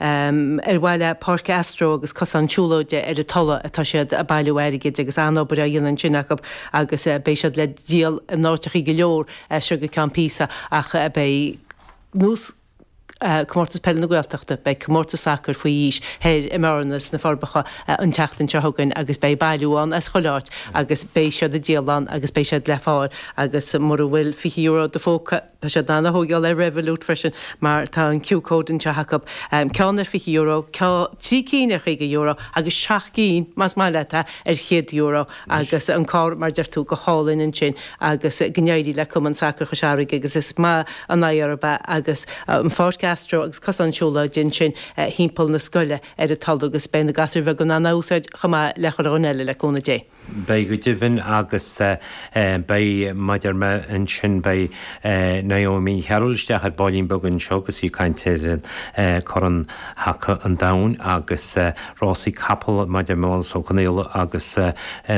ar mhaithe le páirc astro agus cosán siúlóide ar an Tulach atá siad ag bailiú airgid agus an-obair á dhéanamh ansin acu agus beidh siad le díol in áiteachaí go leor as seo go ceann píosa ach beidh nós Comórtas Peile na Gaeltachta, beidh comórtas sacair faoi aois thoir i mBearna sna Forbacha an tseachtain seo chugainn agus beidh bailiú ann sa chuile áit agus beidh siad ag díol ann agus beidh siad le fáil agus mura bhfuil €20 i do phóca Tá siad in ann a thóigeáil ar Revolut freisin mar tá an QR code anseo acu. Ceann ar fhiche euro, trí cinn ar chaoga euro agus seacht gcinn, más maith leat é, ar chéad euro agus an carr mar deir tú, go hálainn ansin agus go n-éirí le Cumann Sacair Chois Fharraige agus is maith an airí orthu é agus an pháirc astro agus cosán siúlóide ansin thimpeall na scoile ar an Tulach agus beidh na gasúir bheaga in ann é a úsáid chomh maith le chuile dhuine eile le cúnamh Dé. Beidh go deimhin agus beidh muide ansin beidh Naomi Carroll isteach ar baillín beag anseo agus í ag caint ar Chorn Haca an Domhain agus rásaí capall maidir le Michael Ó Conghaile agus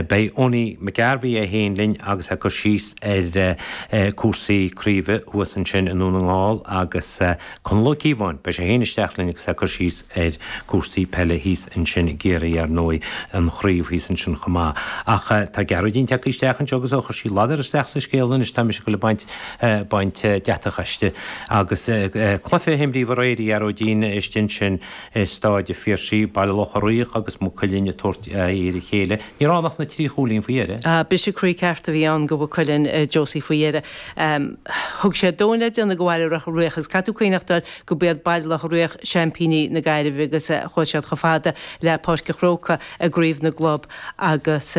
beidh Eoiní McGarvey é féin linn agus ag cur síos ar cúrsaí craoibhe thuas ansin i nDún na nGall agus Conall Ó Cíobháin, beidh sé féin isteach linn agus ag cur síos ar cúrsaí peile thíos ansin i gCiarraí ar ndóigh, an chraobh thíos ansin chomh maith. Ach tá Gearóidín tagtha isteach anseo agus ó chuir sí a ladar isteach sa scéal anois tá mise ag dul ag baint deatach aisti. Agus cluiche a himríodh aréir, a Ghearóidín, istigh ansin i Stáid a' Phiarsaigh, Baile Locha Riach agus Maigh Cuilinn ag tabhairt aghaidh ar a chéile, ní raibh ann ach na trí chúilín faoi dheireadh. Briseadh croí ceart a bhí ann go Mhaigh Cuilinn, a Josie, faoi dheireadh. Thug sé a dhóthain le déanamh go Bhaile Locha Riach is caithfear cuimhneachtáil gob iad Baile Locha Riach seaimpíní na Gaillimhe agus chuaigh siad chomh fada le Páirc a' Chrócaigh i gCraobh na gClub agus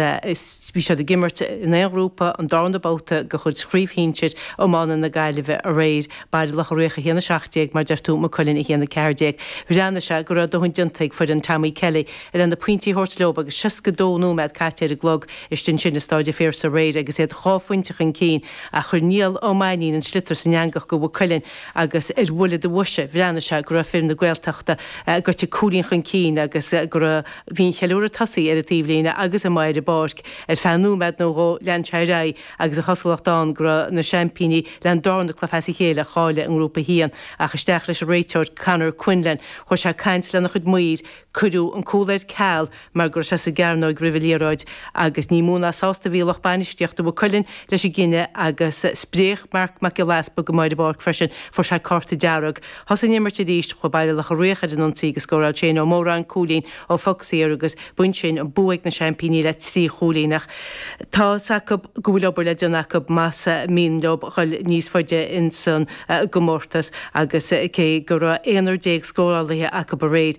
bhí siad ag imirt i nGrúpa an darna babhta de chuid Chraobh Shinsir Iomána na Gaillimhe aréir, Baile Locha Riach 1-17 mar deir tú, Maigh Cuilinn 1-14. Bhreathnaigh sé go raibh dóthain déanta ag foireann Tommy Kelly. leis na pointí a thabhairt leo agus 62 nóiméad caite ar an gclog. Istigh ansin i Stáid a' Phiarsaigh aréir agus iad dhá phointe chun cinn ach chuir Niall Ó Mainnín an sliotar san eangach go Mhaigh Cuilinn agus ar bhuille boise, bhreathnaigh sé go raibh fir na Gaeltachta gaibhte cúilín chun cinn agus bhí an ceiliúradh tosaithe ar an taobhlíne agus ar an bpáirc. Ar feadh nóiméad nó dhó, lean sé ar aghaidh agus a chosúlacht ann go raibh na seaimpíní le dhá chluiche as a chéile a chailleadh i nGrúpa 1 ach isteach leis an réiteoir Conor Quinlan. Chuir sé caint lena chuid maoir, Cuireadh an cúl ar ceal mar go raibh sé sa gcearnóig roimh an liathróid agus ní mó ná sásta a bhí lucht bainistíochta Mhaigh Cuilinn leis an gcinneadh agus spréach Marc Mac Giolla Easpaig go maidí ar an bpáirc freisin. Fuair sé cárta dearg. Thosaigh an imirt arís. Chuaigh Baile Locha Riach ar an ionsaí agus scóráil Shane Ó Móráin cúilín ó phoc saor agus b'in sin an bua ag na seaimpíní le trí chúilín ach tá's acu go bhfuil obair le déanamh acu más mian leo dul níos faide ins an gcomórtas agus cé go raibh aonar déag scórálaithe acu aréir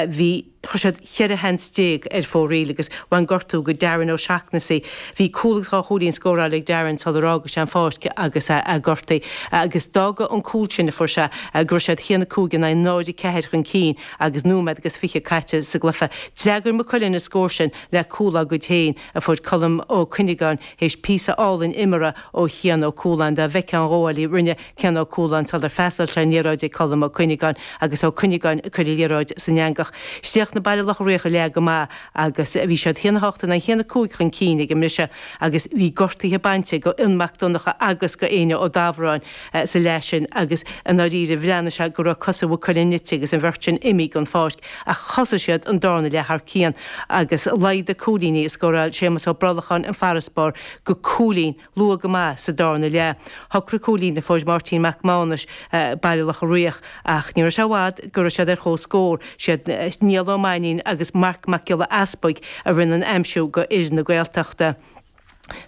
bhí, chuir siad cheithre sheans déag ar fóraoil agus bhain gortú go Darren Ó Seachnasaigh. Bhí cúl agus dhá chúilín scóráilte ag Darren sular fhága sé an pháirc agus é gortaithe agus d'fhága an cúl sin a fuair sé go raibh siad haon a cúig in aghaidh náid a ceathair chun cinn agus nóiméad agus fiche caite sa gcluiche. D'fhreagair Maigh Cuilinn an scór sin le cúl á gcuid féin a fuair Colm Ó Cuinneagáin théis píosa álainn imeartha ó Chian Ó Cualáin. Dá bhfeicfeá an ghabháil a rinne Cian Ó Cualáin sular fhreastail sé an liathróid ag Colm Ó Cuinneagáin agus Ó Cuinneagáin ag cur an liathróid san eangach. Chríochnaigh Baile Locha Riach an leath go maith agus bhí siad haon a hocht in aghaidh haon a cúig chun cinn ag an mbriseadh agus bhí gortuithe bainte go Fhionn Mac Donncha agus go Éinne Ó Dámhráin sa leath sin agus i ndáiríre bhreathnaigh sé go raibh cosa Mhaigh Cuilinn nite agus an bheirt sin imithe den pháirc ach thosaigh siad an darna leath thar cionn agus laghdaigh cúilíní a scóráil Séamus Ó Brolacháin an farasbarr go cúilín luath go maith sa darna leath. Shocraigh cúilín a fuair Máirtín Mac Mánais Baile Locha Riach ach ní raibh sé i bhfad go raibh siad ar chomhscór. Siad Niall Ó Mainnín agus Marc Mac Giolla Easpaig a rinne an aimsiú d'fhir na Gaeltachta.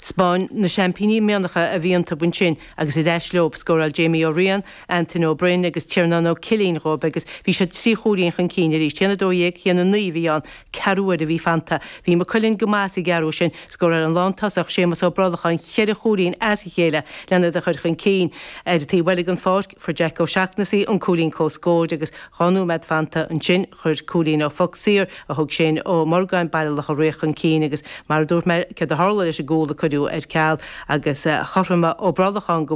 'Spáinn na seaimpíní an mianach a bhí iontub ansin agus ar ais leob. Scóráil Jamie Ó Riain, Antaine Ó Broin agus Tiarnán Ó Cillín dhóib agus bhí siad trí chúilín chun cinn arís. Haon a dó dhéag, haon a naoi a bhí ann. Ceathrú uaire a bhí fanta. Bhí Maigh Cuilinn go maith sa gceathrú sin. Scóráil an lántosach, Séamas Ó Brollacháin cheithre chúilín as a chéile len iad a chur chun cinn. Ar an taobh eile den pháirc, fuair Jeaic Ó Seachnasaigh an cúilín comhscóir agus dhá nóiméad fanta. Ansin, chuir cúilín ó phoc saor, a thóg Séin Ó Morgáin, Baile Locha Riach, chun cinn agus, mar a dúirt mé, céard a tharla leis an gcúl a cuireadh ar ceal agus chothromaigh Ó Brollacháin go